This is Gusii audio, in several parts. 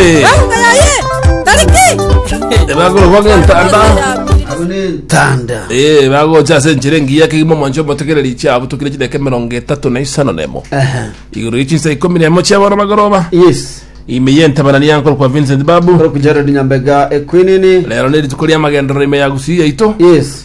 Eh, bagorogwa gentanda tanda Eh, bagocha ase enchera engiya kegima omwancho omotekereri chiabo tokire chideka emerongo etato na isano nemo Aha. igoro ye chinsa ikomi nemo chiabana bagoroba yes ime yentabana niyankoro kwa vincent babu orokujara rinyambega ekwinini lero ne rituko riamagenderero ime ya gusii yaito yes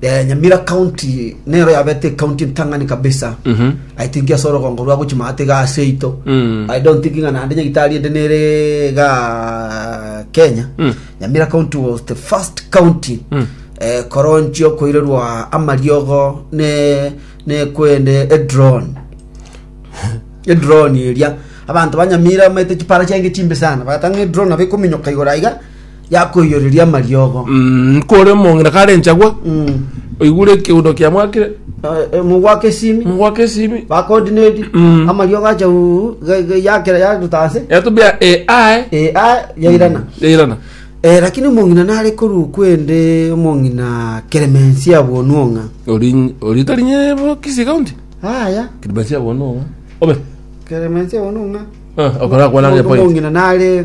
Eh, Nyamira County nero yabete county ntang'ani kabisa. Mhm. I think ase orogongo rwa gochi maate ga ase ito. Mm. I don't think ng'a naende nyagitari ende nere ga Kenya. Mm. Nyamira County was the first county Mm. eh, koronchio koirerwa amariogo ne ne kwende a drone. a drone eria abanto ba Nyamira maete chipara chiange chimbe sana. Bagatanga a drone abe kominyoka igoro aiga yakoiyoreria amariogo Mm, kore omong'ina kare enchagwa Mm. oigure ekeudo kia mwakire Eh, eh, mogwaka esimi mogwaka esimi bakodinedi Mm. amariogo acha uu, ge- ge- yakera yagutase yatubia e ae Eh, ah, yairana yairana Eh, lakini omong'ina nare koru kwende omong'ina keremensi abwonuong'a Ori- oritarinye bo kisi kaunti aya kiribasia bono obe keremensi abwonuong'a Ah, okora kwana gepoint omong'ina nare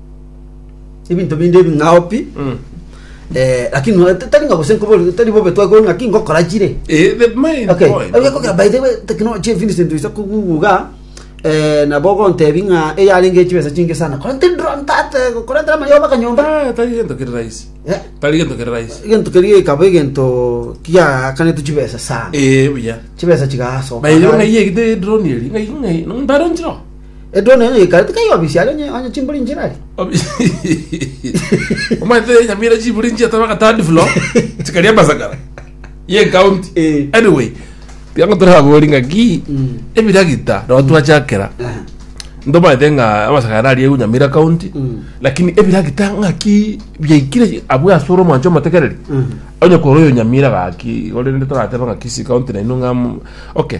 ebinto binde ebing'ao pi Mm. eh, lakini no- tari ng'a gose nkobori tari bobe twakore ng'aki ngokora chire Eh, the main okay point. Oye, kogera by the way technology Vincent isa kuguga eh, nabo ogontebi ng'a eyarenge chibesa chinge sana kora tiri drone tate kora tiri amayoba kanyomba Ah, tari gento kiri rahisi Eh, tari gento kiri rahisi egento keria ekaba egento kiakanete chibesa sana eh buya chibesa chigasoka bayo ngai yegite drone eri ngai ngai ndaro njiro Edwoni onye geikarete kaiga obisia aria onye onye chimbori inchera aria. Obi- omanyete nyamira chiburi nchiatano agatandi flo chikaria amasakara ye county Eh. anyway tiango turabori ngaki Mm. ebiragita no twachakera Aha. ndomanyete ng'a amasakara aria egu nyamira county Mm. lakini ebiragita ng'aki biaikire abwo asore omwancho omotekereri Mhm. onye kore oyo nyamira gaki gore nde torateba ng'a kisi county naino ng'a mm, okay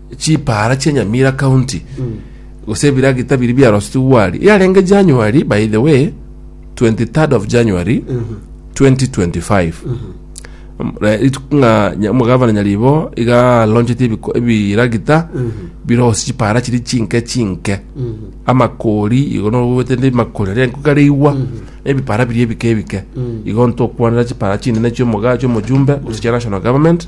chipaara chia Nyamira County gose ebiragita biria biarosetigwe aria yarenge January by the way 23rd of January 2025 Mm, re- rituko ng'a nya- omogavana nyaribo iga alonchete ebiko- ebiragita birose chipaara chiri chinke chinke amakori igo nogobete ndi makori aria nkokareigwa ebipara biria ebike ebike igo ntokwanera chipaara chinene chiomoga chiomojumbe gose chia national government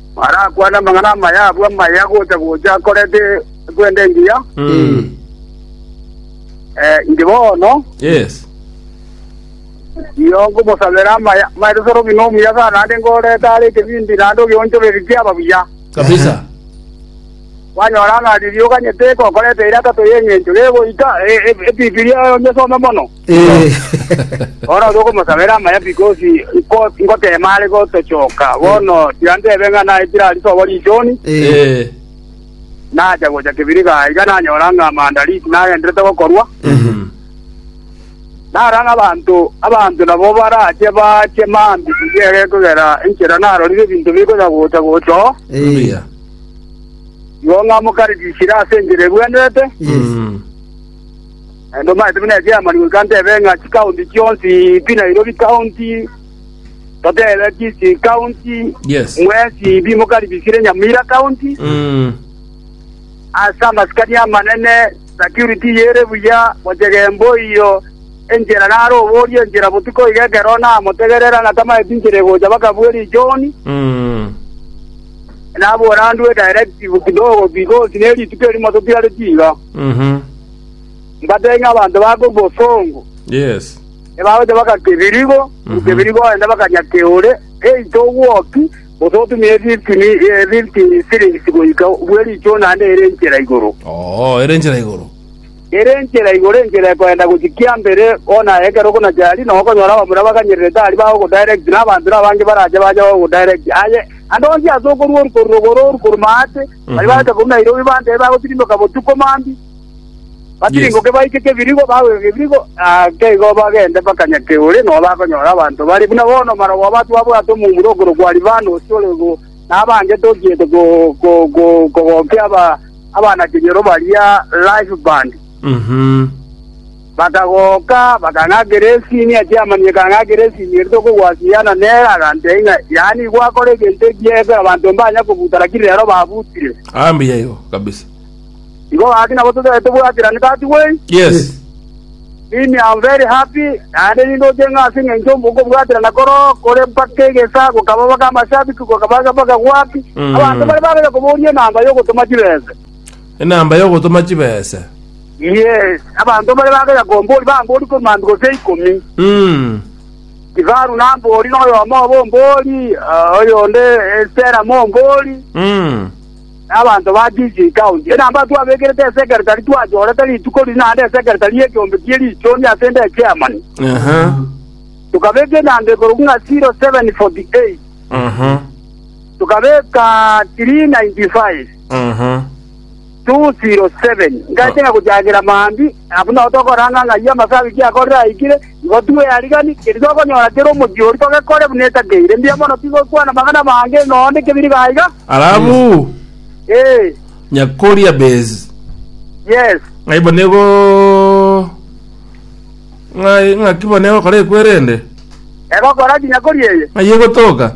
Arakwane amang'ana amaya abwo amaya gocha-gocha akorete ekwenda engiya, eh, inche bono Yes. iyo ngomosabera amaya maete soro buna omuya sana naende ngorete are ekebindi naende ogeonchoberia kiaba buya. Kabisa. Kwanyora ng'a riria oganyete gokoreta eira tato y'eng'encho gegoika e- e- ebibilia onye some mono. Eh. Bono oria okomosabera amaya because nko- nkotema are gotochoka bono tiga ntebe ng'a naye tira risobo richoni Eh. Eh. nacha gocha kibiriga iga nanyora ng'a maandalisi nagenderete gokorwa Mhm. nara ng'a abanto abanto nabo barache bache mambi igere kogera enchera narorire ebinto bikonya gocha gocha oo Eh. Hallelujah. igo ng'amokaririkire ase enchera ebwenerete Yes. Mhm. Naende omanyete buna ekiamani goika ntebe ng'a chikaunti chionsi pi Nairobi County, totebe Kisii County, Yes. mwesi pi mokaribisire Nyamira County. Mm. Ase amasikani amanene security yere buya, gochega emboiyo enchera naro oborie enchera botuko iga ekero namotegerera ng'a tamaeti nchera egocha baka bweri John, Mm. nabora ndue directive kidogo because ne rituko erimo totiareti iga. Mhm. Mbatebie ng'a abanto bake obosongo Yes. ebagocha baka kebirigo, Mhm. kebirigo ogende bakanya keore, eito ogwoki, gose otumie efifty mi- eh, fifty shillings goika bwe richo naende ere enchera igoro. Oo, ere enchera igoro. Ere enchera igoro enchera ekoenda gochia kiambere bono ekero okonacha aria nabo okonyora abamura baganyererete aria bagogodirect na abanto nabange barache bache bagogodirect aye ande onsi ase okorwa oru korwa rogoro oru korwa maate Baria bagotaka korwa Nairobi bantebe bagotirimboka botuko mambia, batirimboke baike Kebirigo, bagoika Kebirigo, ake igo bagende mpaka Nyakeure, nao bakonyora abanto bare buna bono maroba abo twabwate omomura okorokwa Alifanosi ore igoro, na abange tochiete ko- ko- ko- kogokia aba- abana-kenyoro baria Lifeband. Bakagoka, bakang'akera esinia chi'amanyinga, ekang'akera esinia ere tokogwasiyana nere, agantebi ng'a, Yaani gwakora egento ekiya ekero abanto mbanya kobuta, lakini rero babutire. Ah, mbuya igo kabisa. Igo gaki nabo tobeete tobwaterane that way. Yes. Mimi am very happy naende nindoche ng'a ase eng'encho obo- okobwaterana koro kore mpaka egesaa gokaba mpaka amashabiki gokaba mpaka gwaki Mm. abanto bare babeire koboria enamba yogotoma chibese Enamba y'ogotoma chibese. Yes, abanto mbare bagera kombori bambori korwa mambia gose ikomi. Mm. Kifaru nambori noyomo obo mbori, ah, oyonde eh, Stella mombori, Mm. na abanto ba Kisii County. Enamba twabekerete esekretari twachorete rituko riri naende esekretari y'ekiombe kie richoni ase ende echairman. Aha. Tukabeka enamba igoro ng'a 0748. Aha. tukabeka 395 Aha. 207 ngache ng'a gochakera mambia abwo nao tokoranga ng'a ayio amase Agiki akorire aikire igo tweyarigani keri tokonyora kere omochie oria togekore buna etakeire mbuya mono tigokwana amang'ana amange ng'a onde kebiri gaiga Alafu ee nyakoria base. yes Ng'ai bono igo ng'ai ng'aki bono egokora ekwerende. egokora kinya kori eye Ng'ai egotoka.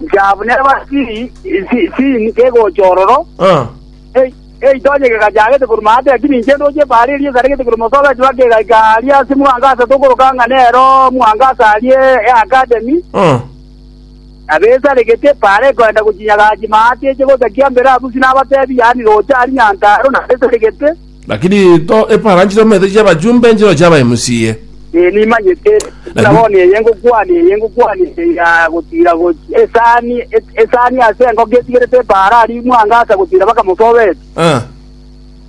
Nchabu neba siri si- sini kegocha ororo, Ah, e- eito onye kegachagete korwa maate, lakini inche ndoche ebari eria esaregete korwa Mosogati bakegaika aria ase Mwangasa tokoroka ng'a nero Mwangasa aria eakademi, ah, nabo esaregete ebari ekoenda gochinyagachi maate eche gocha kiambere abusi nabatebi yaani roche aria Nyantarua nabo esaregete. Lakini to eparanchire omete chiabachumba enchero chiaba emusiye. Ee, nimanyete, buna bono eye ngokwania, eye ngokwania eye ya gotira gochia esani, e- esani ase engoko etigerete epaara aria imwanga ase gotira mpaka mosobeti. Ah,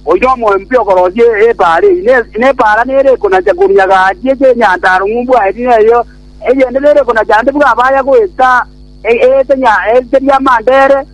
Oino omoempi okorosia e- epaara eyi, ne- nepaara nere ekonacha koruya gati eche enyantaro ng'umbu aye tiga eyo, eyende nere ekonacha ande bwa abaya goeta e- eete nya- eete riamandere,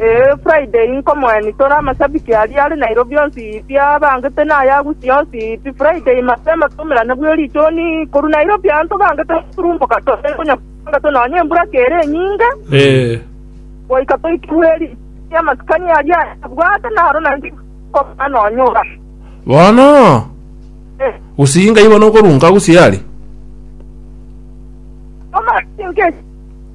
Ee, Friday inkomoenia tore amashabiki aria are Nairobi onsi pi abangete na aya Gusii onsi pi. Friday mapema twaumerane bwe richoni korwa Nairobi aa ntobangete goturumboka tore konya tobangete nonya embura kere enyinge Ee. goika toikigwe ri- amasikani aria abwate naro naende inkoba nonya ora. Bono Eh, Gusii ngaibono okorunka Gusii are. omasi nke-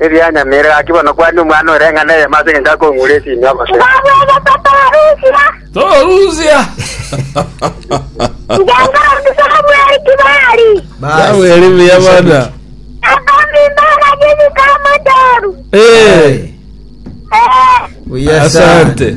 Erianyameire gaki bono kwane omwana o reng'ana eyemo ase engencho akong'ure esinyo gose. Torusia! Yabweri buya bana. Eh, Buya sana. asante.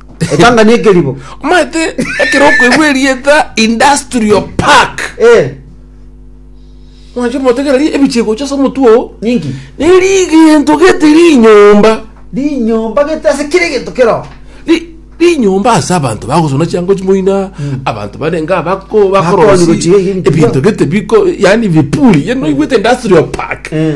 Epanga ne ekeribo. Omanyete ekero okoigwa erieta industrial park. Eh. Mwanche motegera ri ebichie gocha ase omotwe oo. Ninki? Neri egento gete rinyomba. Rinyomba gete ase kire egento kero. Ri rinyomba ase abanto bagosona chiango chimoina abanto barenge abako bakorosia Bakonywa chiga ebi- ebinto gete biko yaani vipuli yaani noigwete industrial park. Eh.